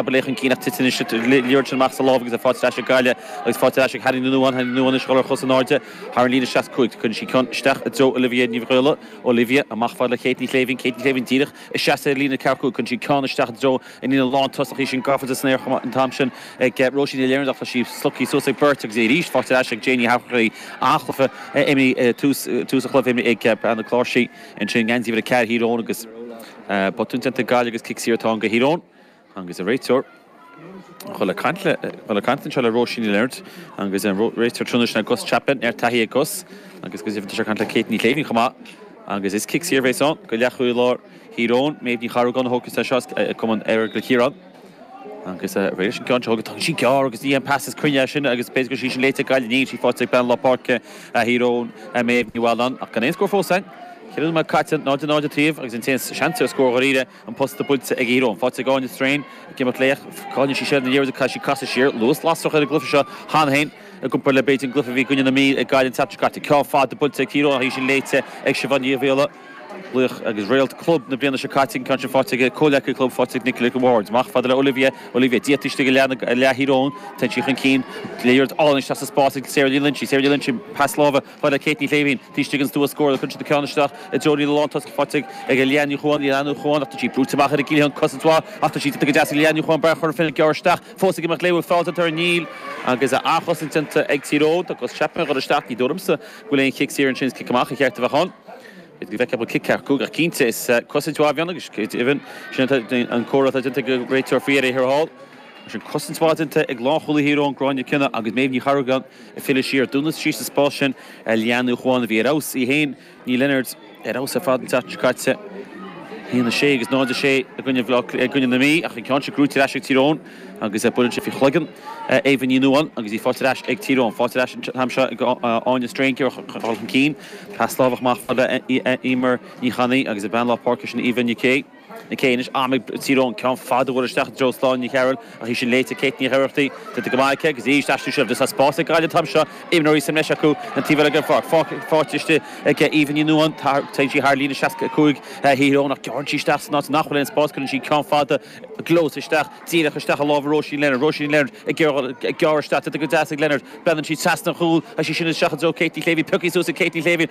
Tá Blake chun cinn ach titeann an giota leathair sin amach as a lámh agus í faighte ar ais ag Gaillimh agus faighte ar ais ag Hannah Noone. Hannah Noone ag sciolla ar chos in airde thar an líne seasca cúig. Cuireann sí ceann isteach i dtreo Olivia Divilly. Olivia amach fad le Kate Ní Shléibhín. Kate Ní Shléibhín díreach ag seasamh ar líne ceathracha cúig. Cuireann sí ceann isteach i dtreo an líne lántosach. Í sin gafa go deas san aer chomh maith an t-am sin ag Róisín Ní Leonard ach tá sí slogtha suas ag beirt agus í arís faighte ar ais ag Jane Ní Sharchaí. An-chluiche a imríodh tús tús an chluiche a imríodh ag Breandán Cláirsigh ansin. Geansaí uimhir a ceathair Thír Eoghain agus botún déanta ag Gaillimh agus cic saor atá ann do Thír Eoghain. Agus an réiteoir ag goil ag caint anseo le Róisín Ní Leonard agus réiteoir an tráthnóna Gus Chapman an-taithí ag Gus agus go deimhin tá sé ag caint le Kate Ní Chéilleachair chomh maith agus is cic saor a bhéas ann do leathchúlaí láir Thír Eoghain, Méabh Ní Charragáin a thógfas é seo as cumann Earagail Cill Chiaráin agus réidh leis an gceann seo, tá sí gearr agus ní haon phas cruinn é sin agus b'fhéidir gur sí sin léite ag Gaillimh, níl sí faighte ag bean lár páirce Thír Eoghain, Méabh Ní Mhealláin ach gan aon scór fós ann, ceithre nóiméad caite, 0-0 an taobh agus an t-aon seans ar scór dháiríre. an posta buailte ag Tír Eoghain. Faighte ag Áine Strain ag imeacht léi. Cailleann sí seilbh na liathróide caithfidh sí casadh siar. Luas lasrach ar an gcluife seo. Cheana féin i gcomparáid le b'fhéidir an gcluife a bhí i gcoinne na Mí ag Gaillimh an tseachtain seo caite. Ceann fada buailte ag Tír Eoghain ach í sin léite ag Siobhán Divilly. Laoch agus réalt club na bliana seo caite an ceann sin faighte ag a comhghleacaí club faighte ag Nicola Ward. Amach fada le Olivia. Olivia díreach istigh i leath na leath Thír Eoghain. Téann sí chun cinn. Liathróid álainn isteach sa spás ag Sarah Ní Loingsigh. Sarah Ní Loingsigh pas láimhe. Chomh fada le Kate Ní Shléibhín, taobh istigh den stua scórála cuireann sí ceann isteach i dtreo an líne lántosach faighte ag Leanne Ní Chuain, Leanne Ní Chuain, ach tá sí brúite amach ar an gcliathán ag cosaint mhaith ach tá sí déanta go deas ag Leanne Ní Chuain bean Chora Finne ag gearradh isteach fós ag imeacht léi bhfuil feall déanta uirthi níl agus an-chosaint déanta ag Tír Eoghain tá Gus Chapman ag goil isteach ní dóigh liomsa go bhfuil aon chic saor ansin is cic amach ba cheart a bheith ann féadfaidh go bhfeicfeadh muid cic ceart go ach cinnte is cosaint mhaith a bhí ann agus go deimhin sin atá an comhartha atá déanta ag an réiteoir faoi dheireadh thiar thall mar sin cosaint mhaith déanta ag lánchúlaí Thír Eoghain Gráinne McKenna agus Méabh Ní Charragáin Ag filleadh siar, dúnann sí síos sa spás sin ar Leanne Ní Chuain a bhí ar fheabhas, í féin, Ní Leonard, ar fheabhas ar fad an tseachtain seo caite, 1, 6 agus 0, 6 i gcoinne na Mí, ach an ceann seo gnóite ar ais ag Tír Eoghain agus buaileann sé faoi chloigeann Éabha Ní Nuadháin agus í faighte ar ais ag Tír Eoghain. Faighte ar ais an t-am seo ag Áine Strain ag goil chun cinn, pas láimhe amach fada le Eimear Ní Chainnaigh agus a bean lár páirce sin Aoibheann Nic Aoidh. Nic Aoidh anois, am ag Tír Eoghain ceann fada buailte isteach i dtreo Sláine Ní Chearúill, ach í sin léite ag Kate Nic Oireachtaigh, déanta go maith aici, agus aríst, aistriú seilbhe agus tá spás ag Gaillimh an t-am seo, imreoirí sa mbreis acu, an taobh eile den pháirc, faighte, faighte istigh ag Éabha Ní Nuadháin, téann sí thar líne 65 Thír Eoghain, ach gearrann sí isteach san áit nach bhfuil aon spás, cuireann sí ceann fada i gclós isteach, díreach isteach i lámha Róisín Leonard, Róisín Leonard ag géarghol, ag gearradh isteach, déanta go deas ag Leonard, breathnaíonn sí trasna an chúl, agus sí sin isteach i dtreo Kate Ní Shléibhín, pioctha suas ag Kate Ní Shléibhín,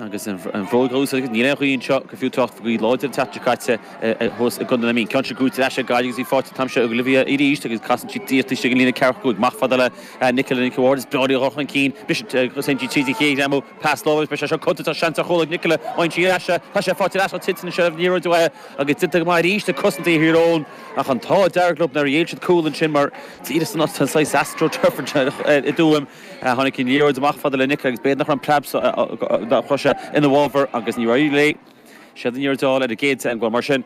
Agus an bhróg thuas aige, níl aon ghaoth anseo, gur fiú trácht faoi láthair an t-eachtra caite thuas i gContae na Mí. Ceann sin cúirte ar ais ar Gaillimh agus bhí faighte ag Olivia arís agus casann sí díot istigh ag an líne ceathrú a cúig. Amach fada le Nicola Nicky Ward, is breá le dhul chun cinn. Mise St G tríd an chéad ghreim ó Past Love agus beidh sé seo codlata tá seans ar chuala Nicola an sí ar ais. Tá sé faighte ar ais ó Tintin an seilbh níorbh fhada agus déanta go maith arís le cosanta a shaothair ann ach an t-ádh dearg liom nár ndearna siad cúl ansin mar tá iad san saghas astro turf anseo i dTuaim. Tháinig an liathróid amach fada le Nicola agus b'éigean nach raibh an preab so dá chroch sé ina bhfabhar agus ní raibh léi. Siad aniar a d'fheall ar an gcéad teann. Bhuel, mar sin,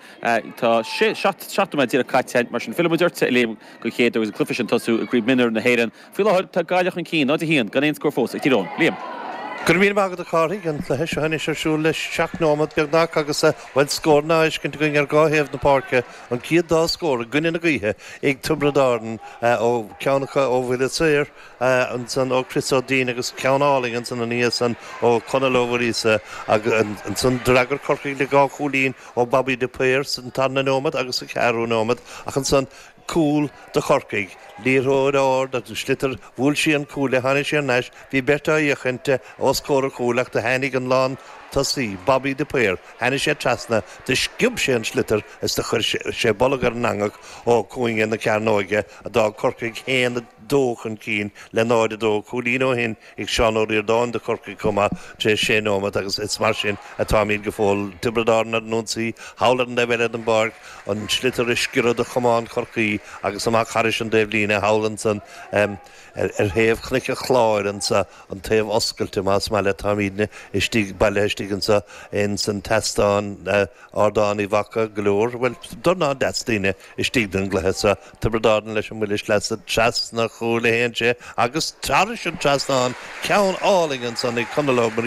tá sé, seacht, seacht nóiméad díreach caite, mar sin, fillfimid ortsa, a Liam, go fóill agus an cluiche sin tosaithe i gCraobh Mionúr na hÉireann. Faoi láthair, tá Gaillimh chun cinn, 0, 1, gan aon scór fós ag Tír Eoghain. Liam. Go raibh míle maith agat, a Chárthaigh. An cluiche seo anois ar siúl le seacht nóiméad beagnach agus, bhuel, scóranna feiscthe againn ar dhá thaobh na páirce, an chéad dá scór i gcoinne na gaoithe ag Tiobraid Árann ó ceann acu ó bhuille saor, ansan ó Chris Ó Duinn agus ceann álainn ansan ina dhiaidh san ó Conall Ó Muiríosa agus ansan d'fhreagair Corcaigh le dhá chúilín ó Bobby de Paor san tarna nóiméad agus sa cheathrú nóiméad ach ansan cúl do Chorcaigh, liathróid ard, an sliotar, bhuail sé an cuaille, tháinig sé ar ais, bhí beirt á fhiach istigh os comhair a chúil ach do tháinig an lán tosaí, Bobby de Paor, tháinig sé trasna, do sciob sé an sliotar is do chuir sé bolg ar an eangach ó chúinne na cearnóige a d'fhág Corcaigh a haon a dó chun cinn le 0-2, cúilín ó shin ag Seán Ó Ríordáin do Chorcaigh chomh maith tar éis sé nóimeat agus is mar sin atáimid go fóill, Tiobraid Árann ar an ionsaí, thall ar an taobh eile den bpáirc, an sliotar tar éis sciorradh de chamán Chorcaí agus amach thar an dtaobhlíne thall ansan ar thaobh Chnoic an Chláir insa an taobh oscailte más maith leat, táimidne istigh, bailithe istigh insa insan tseastán, Ardán Uí Mhaca go leor, bhuel dornán deas daoine istigh don gcluiche seo. Tiobraid Árann leis an mbuille sleasa trasna chúl a haon, téann sé agus thar an trasnán, ceann álainn ansan ag Conall Ó Muirí.